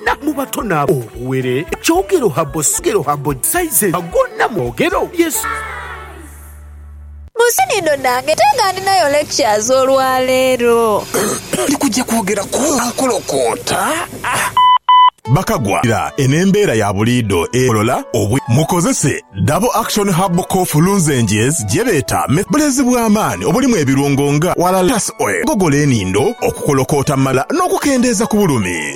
na mu bato na obuwere, ekyogero ha bo sogero ha bo size ha go na mwogero Yesu. Museni inho nange ate nga ndinayo lectures olwaleero. Ndi kugya kwogera ku nkolokoota. Bakagwa ira eno embeera ya buliido egolola obwi. Mukozese Double Action Herbal Cough Lunzenges gye beeta me. Bulezi bwa maani obulimu ebirungo nga, walalas oil, okugogola enindo, okukolokoota mu mala n'okukendeeza ku bulumi.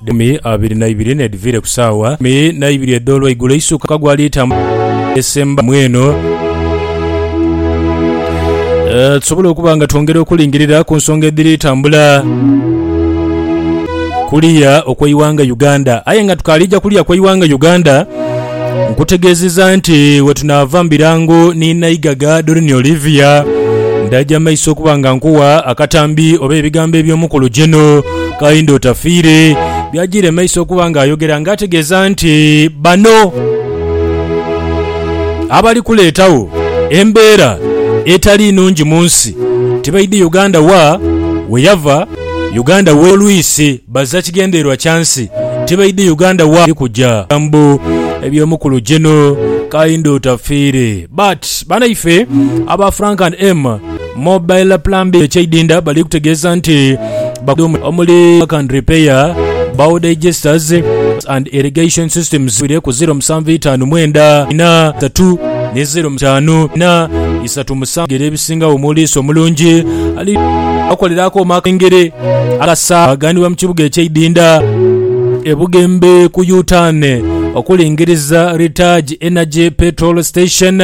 Dhumi abiri na ibiri n'edhiviire ku saawa ikumi na ibiri edh'olweigulo eisuka ka gwaliita mu esemba mweno, tusobole okuba nga twongera okulingirira ku nsonga edhiri tambula kuliya okw'eighanga Uganda. Aye nga tukaali ja kuliya kw'eighanga Uganda, Nkutegeezeza nti we tunaava mu birango ni Naighaga Doreen Olivia, ndaja mu maiso okuba nga nkuwa akatambi oba ebigambo eby'omukulu Geno Kahinda Otafiire by'ajiire mu maiso okuba ng'ayogera ng'ategeeza nti bano abali kuleetawo embeera etali nungi mu nsi tibaidhi Uganda wa we yava, Uganda w'olwisi. Baza kigendererwa kya nsi tibaidhi Uganda wa eri kuja bigambo ebyo mukulu Geno Kainda otafiire but banaife aba Frank and M mobile plumbing e Kyaidinda bali kutegeeza nti bakudomu omuli work and repair bow digesters and irrigation systems bire ku ziro musanvu itaanu mwenda ina tatu ni ziro mutaanu ina Bisatu musanvu bigere ebisingagho mu liiso omulungi ali akolera akooma akengere akasa aganibwa mu kibuga eky'eidinda e Bugembe ku Yutaane okulingiriza Ritage Energy Petrol Station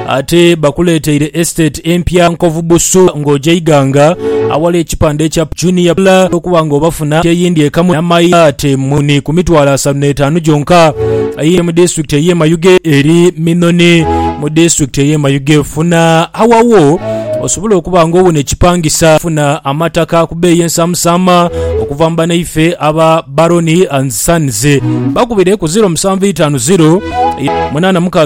ate bakuleeteire estate empya Nkovu Busu ng'oja Iganga awali ekipande ekya Junior Pula okuba ng'obafuna eyindi ekamu n'amaate muni ku mitwalo asatu n'etaanu gyonka aye mu disitulikiti ey'e Mayuge eri Minoni mu disitulikiti ey'e Mayuge. Funa awawo osobole okuba nga owona ekipangisa. Funa amataka ku bbeeyi ensamusaama okuva mu banaife aba Baroni and Sons. Bakubire ku 0750 86